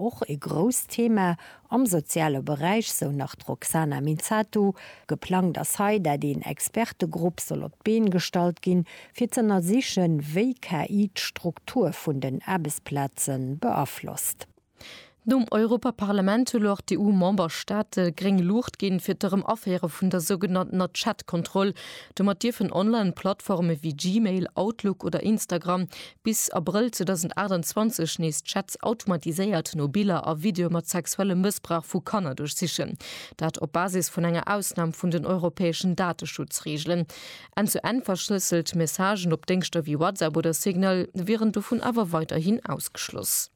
Och e grousst Thema am soziale Beräich, sou nach d'Roxana Minzatu. Geplangt ass hei, dat een Expertegrupp soll op d'Been gestallt ginn, fir z'ënnersichen, wéi KI d'Struktur vun den Aarbechtsplaze beaflosst. Nom Europaparlament hu lor d'EU-Memberstaate gréng Luucht ginn, fir d'Erëmaféiere vun der sougenanntener Chat-Kontroll. Domat dierfen Online-Plattforme wéi Gmail, Outlook oder Instagram Bis Abrëll 2028 nees d'Chats automatiséiert no Biller a Videoe mat sexuellem Mëssbrauch vu Kanner duerchsichen. Dat op Basis vun enger Ausnam vun den europäeschen Dateschutzreegelen. Enn-zu-enn-verschlësselt Messagen op Déngschter wéi WhatsApp oder Signal wieren dovun awer weiderhin ausgeschloss.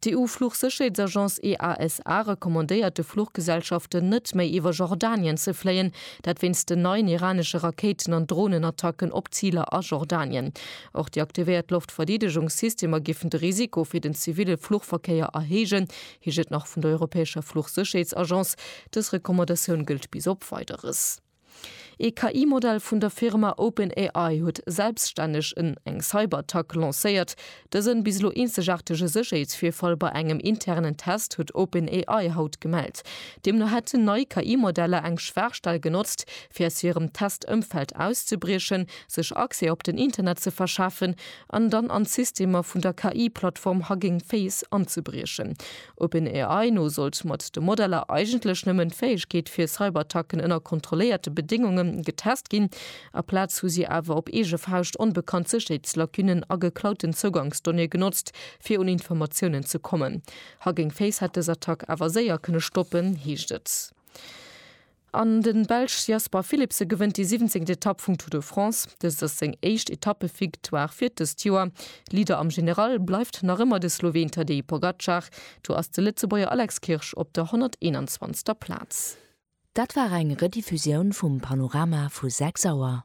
D'EU-Fluchsécherheetsagence EASA recommandéiert de Fluchgesellschaften net méi iwwer Jordanien ze fléien, dat wéinst den neien iranesche Rakéiten an Dronenattacken op Ziler a Jordanien. Och déi aktivéiert Loftverdeedegungssystemer géifen de Risiko fir den ziville Fluchverkéier erhéijen, heescht et nach vun der europäescher Fluchsécherheetsagence. Dës Recommandatioun gëllt bis op Weideres. Ee KI-Modell vun der Firma OpenAI huet selbstänneg en eng Cyberattack lancéiert. Dësen, bis elo eenzegaartege Sécherheetsvirfall bei engem internen Test huet OpenAI haut gemellt. Deemno hätten nei KI-Modeller eng Schwaachstell genotzt, fir aus hirem Test-Ëmfeld auszebriechen, sech Accès op den Internet ze verschafen an dann an d'Systemer vun der KI-Plattform Hugging Face anzebriechen. OpenAI no sollt mat de Modeller eigentlech nëmmen d'Fäegkeet fir Cyberattacken ënner kontrolléierte Bedéngunge getest ginn. Aplaz hu si awer op eege Fauscht onbekannt Sécherheetslacunen a geklauten Zougangsdonnéeë genotzt, fir un Informatiounen ze kommen. Hugging Face hätt dës Attack awer séier kënne stoppen, heescht et. An de Belsch Jasper Philipsen gewënnt déi siwwenzéngt Etapp vum Tour de France. Dëst ass seng éischt Etappevictoire fir dëst Joer. Leader am General bleift nach ëmmer de Sloween Tadej Pogacar. Do ass de Lëtzebuerger Alex Kirsch op der 121. Plaz. Dat war eng Rediffusioun vum Panorama vu 6 Auer.